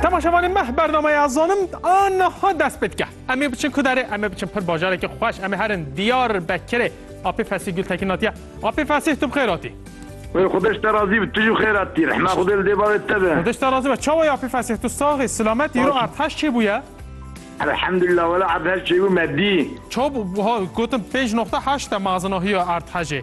Temaşevanê meh bernameya zanim a niha dest pê dike. Em ê biçin ku derê, em ê biçin pir bajarekî xweş, em ê herin Diyar Bekirê. Apê Fesîh Gultekin hatiye. Apê Fesîh tu bi xêr hatî. Wê xwedê ji te razî bi, tu jî bi xêr hatî. Rehma xwedê li dê bavê te be. Xwedê ji te razî be. Çawa ye Apê Fesîh tu sax î, silamet î, îro erdheş çêbûye? Elhemdulillah wele erdheş çêbû me dî. Çabû, wiha gotin pênc noqte heşt e mezina hiya erdhejê.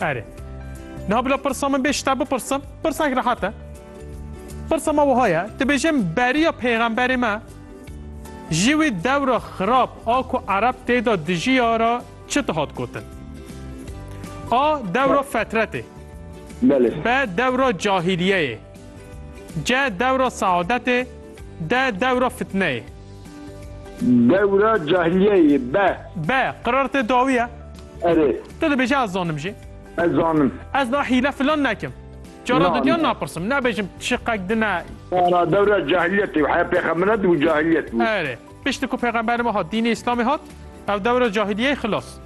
Erê. Niha bila pirsa min bê ji te bipirsim, pirsek rehet e. Pirsa me wiha ye, dibêje min beriya pêxemberê me ji wê dewra xirab a ku ereb têda dijiya re çi dihat gotin? A. Dewra fetretê. Belê. B. Dewra cahîliyeyê. C. Dewra seadetê. D. Dewra fitneyê. Dewra cahiliyeyê be. Be, qirar tê dawiye. Erê. Tu dibêjî ez zanim jî. Ez zanim. Ez na hîle filan nekim. Cara didyan napirsim, nabêjim çi qek din e. Na na dewra cahiliyetê û heya pêxembiran dibû cahiliyet bû. Erê. Piştî ku pêxemberê me hat, dînê îslamê hat, ev dewra cahiliyeyê xilas.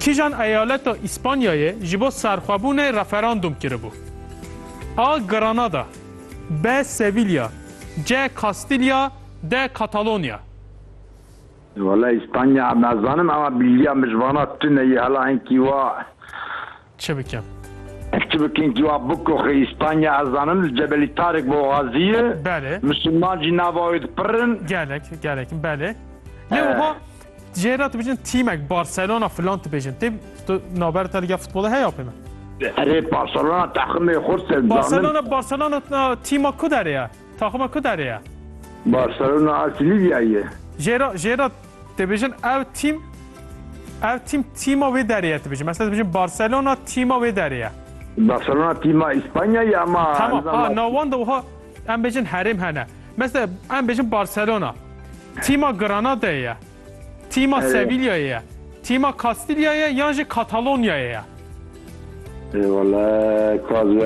Kîjan eyaleta Îspanyayê ji bo serxwebûnê referandûm kiribû? A. Granada B. Sevilya C. Kastilya D. Katalonya. Wala Îspanya nazanim ema bîjîya min ji vana tune ye hala hinkî wa. Çi bikim? Ez çi bikim kî wa bikoxê Îspanya ez zanim li Cebelî Tarik boxazî ye. Belê. Misilman jî nava wê di pirr in. Gelek gelek belê. Lê wiha cêra tu bijin tîmek Barcelona filan tu bêjin. Tê tu naber te li gel futbolê heya pê me? Erê Barcelona taximê xurt se zanim. Barcelona Barcelona tîma ku derê ye? Taxima ku derê ye? Barcelona a Silîvyayê ye. Jêra jêra Dibêjin ev tîm ev tîm tîma wê derê ye dibêjin. Mesela dibêjin Barcelona tîma wê derê ye. Barcelona tîma İspanya ya ama Tamam. A nawan da oha em bêjin herêm hene. Mesela em bêjin Barcelona tîma Granada ye. Tîma evet. Sevilla ye. Tîma Kastilya ye yan jî Katalonyayê ye. Eyvallah. Kaz